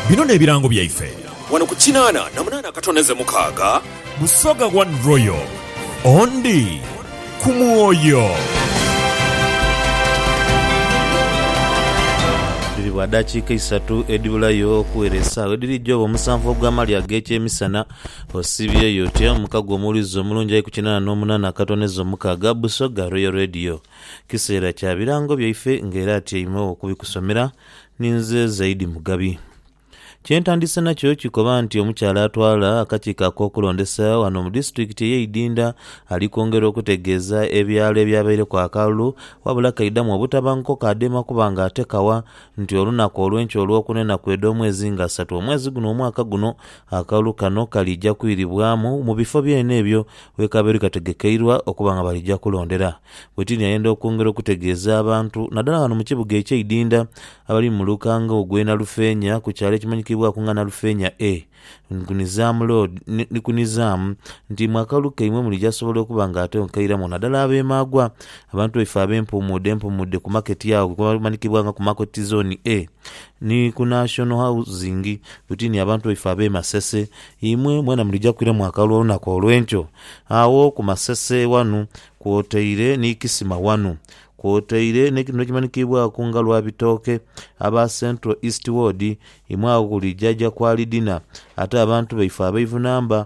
Bino n'ebirango byaife. Wano ku kinaana na munaana akatoneze mukaaga. Busoga One Royal, Ondi ku mwoyo. Dhiribwa dakiika isatu edhibulayo okuwera esaawa edhiri joba omusanvu ogw'amaali ag'ekyemisana. Osibyeyo otya? Omukago omuwulize omulungi ali ku kinaana n'omunaana akatoneze omukaaga. Busoga Royal Radio. Kiseera kya birango byaife nga era atyaimegho okubikusomera ni nze Zaidi Mugabi. Kye ntandise nakyo kikoba nti omukyala atwala akakiiko ak'okulondesa ghano mu disitulikiti eye Idinda ali kwongera okutegeeza ebyalo ebyabaireku akalulu wabula kaidhamu obutabanguko kaadema kuba nga ate kawa nti olunaku olw'enkya olw'okuna enaku edh'omwezi nga asatu omwezi guno omwaka guno Akalulu kano kalija kwiribwamu mu bifo byona ebyo we kabaire kategekeirwa okuba nga balija kulondera. Bwetiini ayenda okwongera okutegeeza abantu nadala ghano mu kibuga ekye Idinda abali mu lukanga ogwe Nalufeenya ku kyalo ekimanyikibwaku nga Nalufeenya A ku Nizaamu Road ni ku Nizaamu nti mwe akalulu kaimwe mulija sobola okuba nga ate onkairamu nadala abe Maagwa abantu baife abe Mpuumuudde Mpuumuudde ku maketi agho ghe bamanyikibwa nga ku Market Zone A Ni ku National Housing tuti ni abantu baife ab'e Masese, imwe mwena mulija kwiramu akalulu olunaku olw'enkyo. Agho ku Masese ghanu kwotaire ni Kisima ghanu, kwotaire n'ekitundu ekimanhikiibwaku nga Lwabitooke, aba Central East Ward, imwe agho ku Luijaja Qualidina, ate abantu baife abeivu namba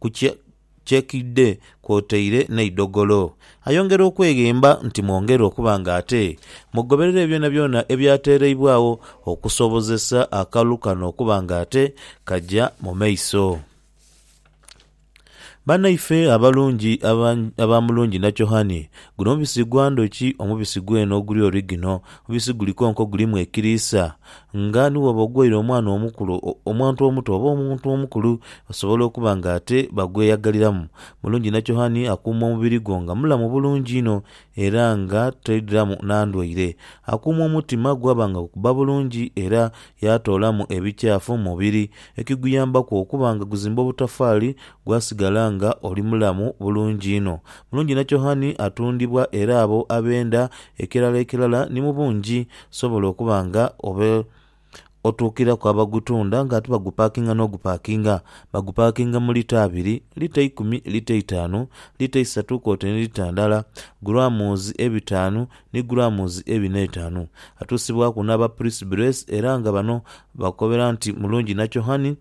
ku kyekidhe kwotaire n'eidhogolo. Ayongera okweghemba nti mwongere okuba nga ate mugoberere byonabyona ebyateereibwagho okusobozesa akalulu kano okuba nga ate kaja mu maiso. Banaife abalungi aba Mulungi Nakyohani, guno mubisi gwa ndhuki, omubisi gwene oguli origino. Omubisi guli konko gulimu ekiriisa, Nga ni bw'oba ogwaire omwana omukulu, omuntu omuto oba omuntu omukulu osobola okuba nga ate bagweyagaliramu. Mulungi Nakyohani akuuma omubiri gwo nga mulamu bulungi inho era nga toidhiramu na ndwaire. Akuuma omutima gwaba nga gukubba bulungi era yaatoolamu ebikyafu mu mubiri, ekiguyambaku okuba nga guzimba obutafaali gwasigala nga oli mulamu bulungi inho. Mulungi Nakyohani atundibwa era abo abenda ekirala ekirala ni mu bungi Kisobola okuba nga oba otuukiraku abagutunda nga ate bagupakinga n'ogupakinga. Bagupakinga mu lita abiri, lita eikumi, lita eitaanu, lita eisatu kwotaire ni lita ndala, guraamuzi ebitaanu ni guraamuzi ebina eitaanu. Atuusibwaku n'aba Purisi Buresi era nga bano bakukobera nti mulungi nachohani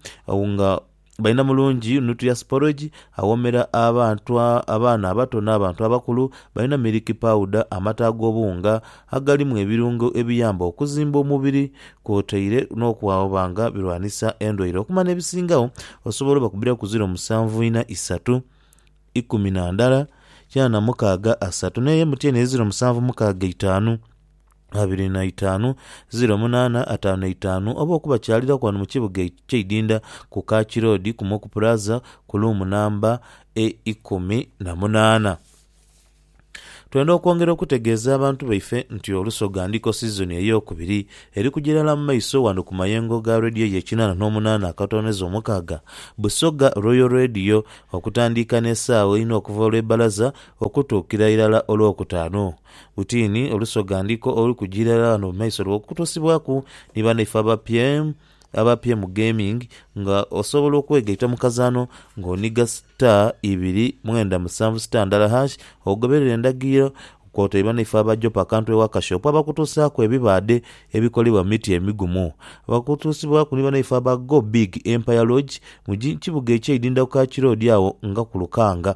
nga Baina mulungi nuclear sporage, awoomera abantu, abaana abato n'abantu abakulu. Baina milk powder, amata ag'obuwunga agalimu ebirungo ebiyamba okuzimba omubiri kwotaire n'okuba nga birwanisa endwaire. Okumala n'ebisingagho osobola obakubiraku ziro musanvu ina isatu, ikumi na ndala, kinaana mukaaga asatu n'eyo emutyeene eri ziro musanvu mukaaga itaanu. abiri na itaanu, ziro munaana ataanu na itaanu oba okubakyaliraku ghano mu kibuga eky'eidinda ku Kaaki Road ku Moku Plaza ku luumu namba e ikumi na munaana. Twenda okwongera okutegeeza abantu baife nti Olusoga ndiko sizoni ey'okubiri eri kuja irala mu maiso ghano ku mayengo ga Radio ye kinaana n'omunaana akatooneza omukaaga, Busoga Royal Radio, okutandiika n'esaawa einha okuva olw'ebbalaza okutuukira irala olw'okutaanu. Butiini olusoga ndiko oluli kujira irala ghano mu maiso lwo kutosibwaku ni banaife abapye abapye mu gaming nga osobola okwegaita mu kazaanho nga oniga star ibiri mwenda musanvu star ndala hash ogoberere endagiriro kwotaire banaife aba Jopa Kantu ewa Kashopo abakutosaaku ebibaadhe ebikolebwa mu miti emigumu. Bakutusibwaku ni banaife aba Go Big Empire Lodge mu kibuga ekye Idinda ku Kaaki Road agho nga ku Lukanga.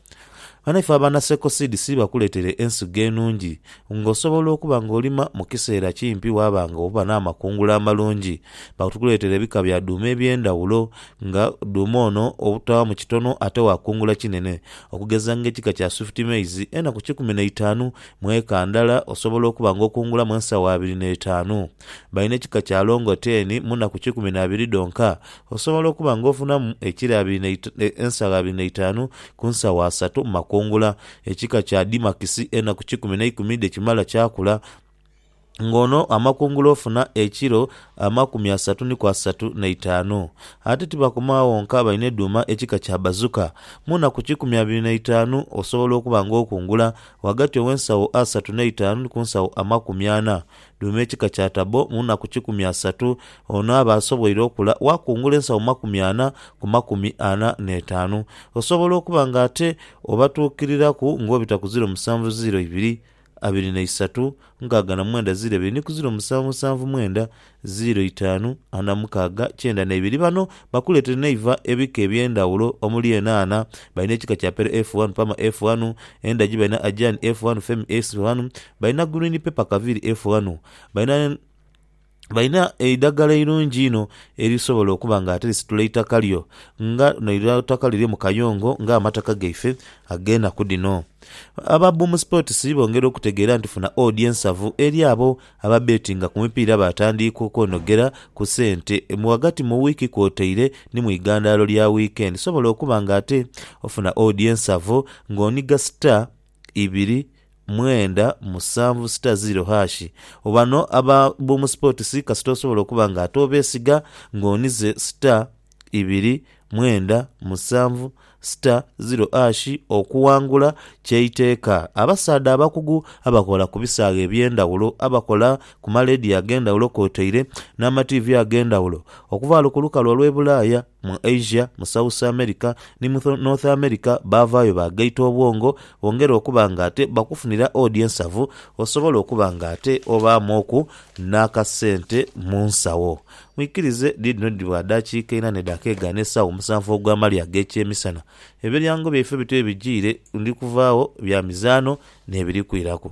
Ghano ife abaana Circle Seed si bakuleetere ensigo enungi ng'osobola okuba ng'olima mu kiseera kimpi waaba ng'oba n'amakungula amalungi. Batukuleetera ebika bya dhuuma eby'endhawulo nga dhuuma ono obutawaamu kitono ate waakungula kinene okugeza ng'ekika kya Swift Maize enaku kikumi na itaanu mu eka ndala osobola okuba ng'okungulamu ensawo abiri n'etaanu. Balina ekika kya Longoten mu nnaku kikumi na biri dhonka. Osobola okuba nga ofunamu ekilo abiri na ensagho abiri na itaanu ku nsagho asatu mu makungula. Ekika kya Dimakisi enaku kikumi na ikumi dhe kimala kyakula, nga ono amakungula ofuna ekilo amakumi asatu ni ku asatu na itaanu. Ate tibakoma agho wonka balina edhuuma ekika kya Bazuka. Mu nnaku kikumi abiri na itaanu osobola okuba nga okungula ghagati ow'ensagho asatu n'eitaanu ni ku nsagho amakumi ana. Duuma ekika kya tabo mu nnaku kikumi asatu, ono aba asoboire okula waakungula ensawo makumi ana ku makumi ana n'etaanu. Osobola okuba nga ate obatuukiriraku ng'obita ku ziro musanvu ziro ibiri, abiri na isatu, nkaaga na mwenda ziro ebiri ni ku ziro musanvu musanvu mwenda, ziro itaanu, ana mukaaga, kyenda na ibiri. Bano Bakuleetere n'eiva ebika eby'endhawulo omuli enhaanha, balina ekika kya Pero F wanu, Pama F wanu, endhagi balina Ajani F wanu, Femi S wanu, balina Gurwini Pepa Kaviri F wanu. Balina balina eidhagala eirungi inho erisobola okuba nga ate lisitula eitaka lyo nga n'eira eitaka lyo liri mu kayongo ng'amataka gaife ag'enaku dhino. Aba Boom Sports bongera okutegeera nti funa odi ensavu eri abo Ababbeetinga ku mipiira baatandiika okwonogera ku sente mu ghagati mu wiiki kwotaire ni mu igandhalo lya wiikendi sobola okuba ng'ate ofuna oodi ensavo ng'oniga sita ibiri mwenda musanvu sita ziiro haashi. Bano aba Boom Sports kasita osobola okuba ng'ate obeesiga ng'onize sita ibiri, mwenda, musanvu, sita, ziro ashi okuwangula ky'eiteeka. Abasaadha abakugu abakola ku bisaaghe eby'endhaghulo, abakola ku maleediyo ag'endhaghulo kwotaire n'amatiivi ag'endhaghulo okuvaalo ku lukalu olw'e Bulaaya, mu Asia, mu South America ni mu North America baavaayo baagaita obwongo bongere okuba ng'ate bakufunira odi ensavu osobola okuba ng'ate obaamwoku n'akasente mu nsawo. Mwikirize, dhiidhino dhibwa daakiika ina ne dakeega n'esaawa omusanvu ogw'amalya ag'ekyemisana. Ebilyango byaife bityo bye bijiire, ndi kuvaagho, bya mizaano, n'ebiri kwiraku.